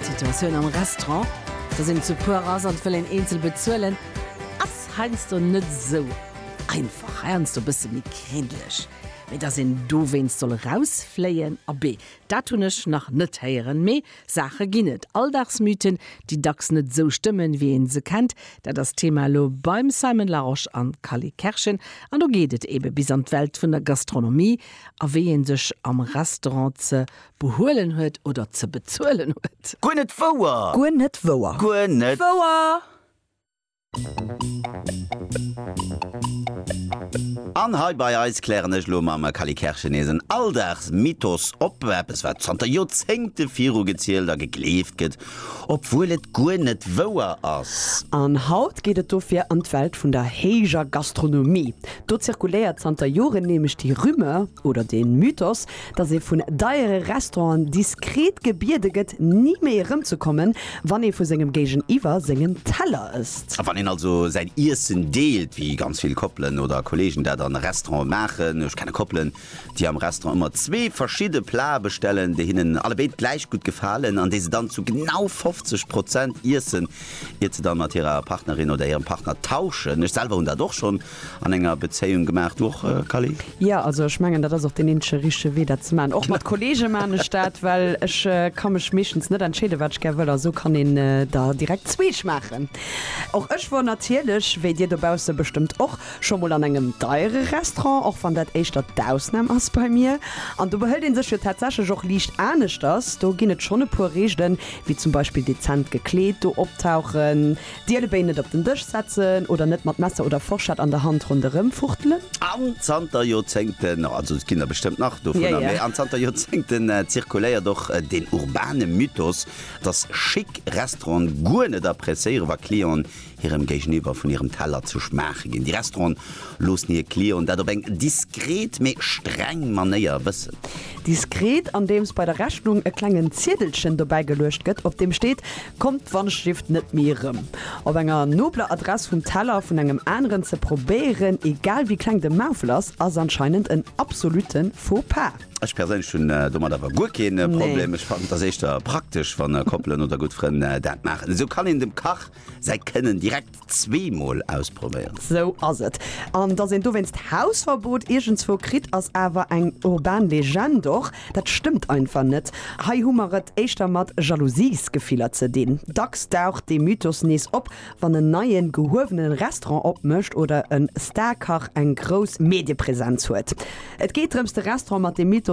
D'Situatioun am Restaurant, dass een zu puer ass an et wëll een eenzel bezuelen, ass heiansdo net esou einfach, heiansdo e bësse méi kréntlech. Mee dass een dowéinst soll erausfléien, abee, dat hunn ech nach net héieren. Mee Saache ginn et, Alldagsmythen, déi dacks net esou stëmmen, wéi ee se kennt. Dat ass d'Thema elo beim Simon Larosche an Cally Kerschen. An do geet et eebe bis an d'Welt vun der Gastronomie a wéi ee sech am Restaurant ze behuelen huet oder ze bezuelen huet. Guer net wouer! Guer net wouer! Guer net wouer! An hei bei eis klären ech elo mam Kally Kerschen nees en Alldagsmythos op, eppes wat zanter Joerzéngte virugezielt a gegleeft gëtt, obwuel et guer net wouer ass. An haut geet et dofir an d'Welt vun der héijer Gastronomie. Do zirkuléiert zanter Joren nämlech déi Rumeur oder dee Mythos, dass ee vun deiere Restauranten diskret gebiede gëtt, ni méi erëmzekommen, wann ee vu sengem Géigeniwwer sengen Teller ësst. Wann een also säin Iessen deelt, wéi ganz vill Koppelen oder Kolleegen dat an Restaurante maachen, ech kenne Koppelen, déi am Restaurant ëmmer zwee verschidde Plate bestellen, déi hinnen allebéid gläich gutt gefalen an déi se dann zu genau 50 Prozent iessen, iert se dann mat hirer Partnerin oder hirem Partner tauschen. Ech selwer hunn dat och schonn an enger Bezéiung gemaacht. Du och Kally? Jo, also ech mengen dat ass och deen eenzege richtege Wee dat ze maachen. Och mat Kollege maan ech dat, well ech ka mech meeschtens net entscheeden wat ech gär wëll a sou kann een der direkt zwee schmaachen. Och ech wor natierlech, wéi dir dobausse bestëmmt och, scho mol an engem deiere Restaurant, och wann dat éischter d'Ausnam ass bei mir. An do behëlt een sech jo tatsächlech och liicht aneschters. Do ginn et schonn e puer Reegelen, wéi zum Beispill dezent gekleet do optauchen, D'Ielebéi net op den Dësch setzen oder net mat Messer oder Forschett an der Hand ronderëm fuchtelen. An zanter Joerzéngten, also et ginn der bestëmmt nach dovunner, mee an zanter Joerzéngten zirkuléiert och deen urbane Mythos, dass schick Restauranten guer net appréciéieren, wa Clienten hirem Géigeniwwer vun hirem Teller ze schmaache ginn. Déi Restauranten loossen hir Clienten dat op eng diskret, mee streng Manéier wëssen. Diskret, andeems bei der Rechnung e klengen Ziedelchen dobäigeluecht gëtt, op deem steet, Kommt d'Wandschrift net méi erëm op enger nobler Adress vum Teller vun engem aneren ze probéieren, egal wéi kleng de Maufel ass, ass anscheinend en absolutte Faux pas. Ech perséinlech hunn domat awer guer keen Problem. Ech fannen et ass éischter praktesch wann Koppelen oder gutt Frënn dat maachen. Esou kann een dem Kach säi Kënnen direkt Zwee mol ausprobéieren. Sou ass et. An dass een dowéinst d'Hausverbot iergendswou kritt, ass awer eng urban Legend. Och dat stëmmt einfach net. Hei hu mer et éischter mat Jalousiesgefiller ze dinn. Dacks daucht dee Mythos nees op, wann en neien, gehuewenen Restaurant opmécht oder e Star-Kach eng grouss Mediepresenz huet. Et geet drëms, de Restaurant mat deem Mythos